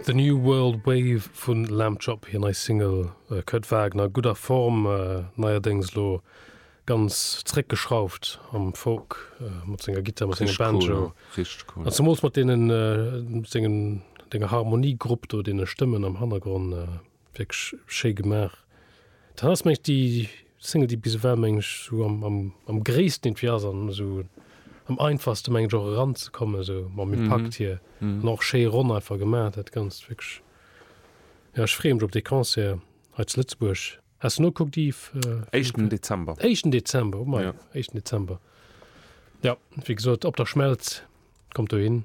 The New World Wave vun Lamb Chop, hir nei Single. Kurt Wagner, gutt a Form, neierdéngs elo ganz zréckgeschrauft am Folk mat senger Gittar, mat sengem Banjo. Richteg cool. An zemools mat deenen, sengen, denger Harmoniegrupp do, deene Stëmmen am Hannergronn. Wierklech schéi gemaach. Dat ass mengen ech déi Single déi bis ewell mengen ech esou am gréissten irgendwie ass an esou am einfachste mengen ech och eran ze kommen esou mam Impakt hier an och schéi ronn einfach gemaach dat ganzt wierklech. Jo ech freeë mech op dee Concert hei zu Lëtzebuerg. Has de nokuckt Yves? Éischten Dezember. Éischten Dezember, oh mei, éischten Dezember. Jo wéi gesot, Op der Schmelz, kommt dohin.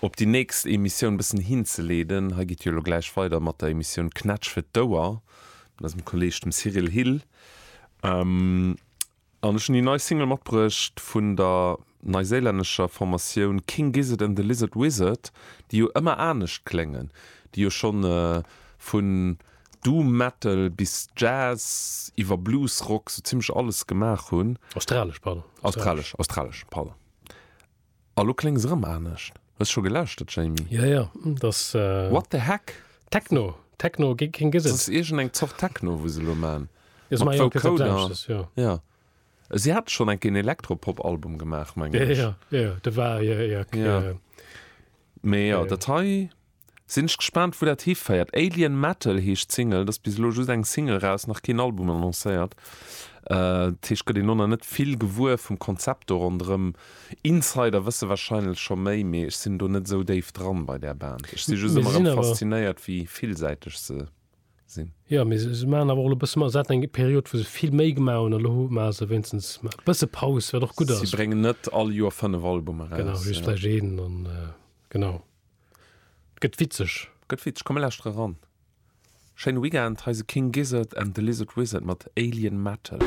Op déi nächst Emissioun bëssen hinzeleeden, hei geet jo elo gläich weider mat der Emissioun Knätsch fir d'Ouer, mat eisem Kolleeg dem Cyril Hill. An ech hunn déi nei Single matbruecht vun der neiséilännescher Formatioun King Gizzard and the Lizard Wizard, déi jo ëmmer anescht kléngen, déi jo schonn vun Doom Metal bis Jazz iwwer Blues-Rock sou zimmlech alles gemaach hunn. Australesch, pardon. Australesch, australesch, pardon. A lo kléngs erëm anescht. Hues scho gelauschtert, Jamie? Jo, jo, et ass. What the heck? Techno, Techno géint keng Gesetz. Et ass iergend eng Zort Techno, wou se elo maachen. Jo, se maachen jo keng Gesetz, jo. Jo. Si hate schonn eng Kéier en Elektropop-Album gemaach, mengen ech. Jo, jo, jo, de war, jo, jo. Mee jo, dat hei. Sinn ech gespaant wou dat hiféiert. Alien Metal heescht d'Single, et ass bis elo just eng Single raus, nach keen Album annoncéiert. Dat heescht gëtt een elo nach net vill gewuer vum Konzept do ronderëm. Insider wësse wahrscheinlech scho méi, mee ech sinn do net esou déif dran bei där Band. Ech si just ëmmer erëm faszinéiert wéi villsäiteg se sinn. Jo mee se maachen awer och elo e bësse, se haten eng Period wou se vill méi gemaach hunn, elo maache se wéinstens e bësse Paus, wat och gutt ass. Si bréngen net all Joer 5 Albume raus. Genau, just vläicht een an genau. Gëtt witzeg! Gëtt witzeg! Komm mir lauschtere ran! Schéine Weekend! Hei se King Gizzard and the Lizard Wizard mat Alien Metal.